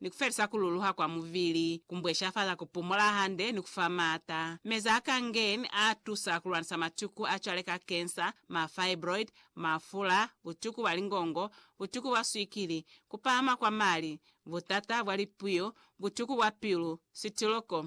ni ku felisa ku luluha kwa mubili, ku mbweshafala ku pumola hande, ni ku fa maata. Meza a Kangen a tusa ku lwanisa matuku a cwale ka kensa, ma fibroid, mafula, butuku bwa lingongo, butuku bwa swikili, ku pahama kwa mali, butata bwa lipuyo, butuku bwa pilu, sitiloko,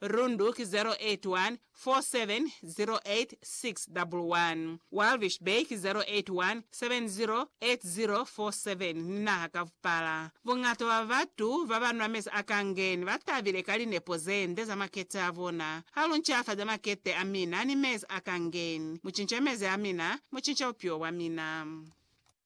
Rundu ki 0814708611, Walvis Bay ki 0817080047 ni naha ka vupala. Buñata bwa batu baba nwa mezi a kangeni ba tabile ka linepo ze nde za makete a bona. Ha lu ncafaza makete a mina ni mezi a kangeni, mu cinca mezi a mina, mu cinca bupilo bwa mina.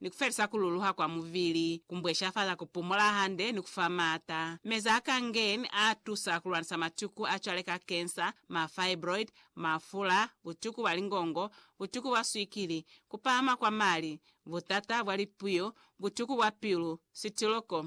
ni ku felisa ku luluha kwa mubili, ku mbweshafala ku pumola hande ni ku fa maata. Meza a Kangen a tusa ku lwanisa matuku a cwale ka kensa, ma fibroid, mafula, butuku bwa lingongo, butuku bwa swikili, ku pahama kwa mali, butata bwa lipuyo, butuku bwa pilu, sitiloko,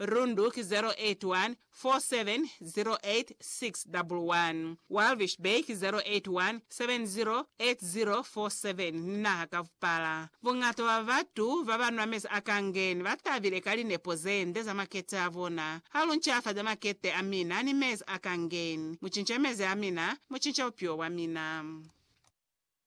Rundu ki 0814708611, Walvis Bay ki 0817080047 ni naha ka vupala. Buñata bwa batu baba nwa mezi a kangeni ba tabile ka linepo ze nde za makete a bona. Ha lu ncafaza makete a mina ni mezi a kangeni, mu cinca mezi a mina, mu cinca bupilo bwa mina.